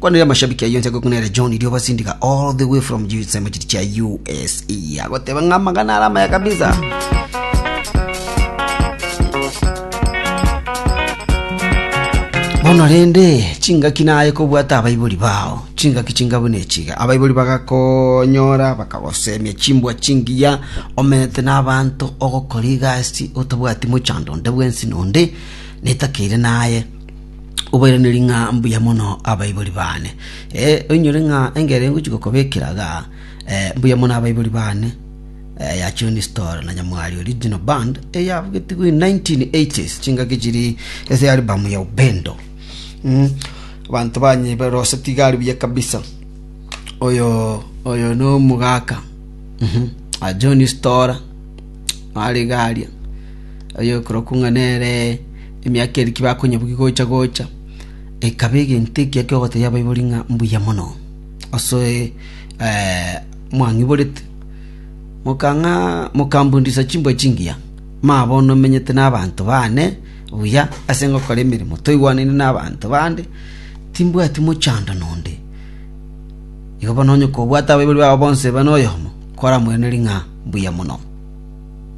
Kwana ria mashabiki ayio inche ngokuna ere John Irioba Sindiga all the way from USA machiri chia USA agoteba ng'a amagana ara amaya kabisa bono rende chingaki naye kobwata abaibori bao chingaki chingabu nechiga abaibori bagakonyora bakagosemia chimbwa chingiya omenete n'abanto ogokora egasi otabwati mochando onde bwensi nonde netakeire naye obairanerie ng'a mbuya mono abaibori baane. Ee, oinyore ng'a engere ngochia gokobekera iga, eh, mbuya mono abaibori baane, eh, ya John Storr na Nyamwari Original Band, eyabugetigwe in 1980s, chingaki chiri ase album ya Upendo. Mm, abanto banye barosetie iga aria buya kabisa. Oyo, oyo no omogaka, mhm, ah, John Storr, nare iga aria, oyo okorokwa ng'a nere Emiaka eria tibakonyebugigwa gocha gocha ekaba egento ekiya ki'ogotebia abaibori ng'a mbuya mono ase mwang'iborete, mokang'a mokambundisa chimbwa chingiya. Maya bono menyete nabanto baane buya ase ngokora emeremo, toigwanaine nabanto bande, timbwati mochando nonde. Igo bono onye kobwate abaibori babo bonsi ebe noyomo, kwaramwenereri ng'a mbuya mono.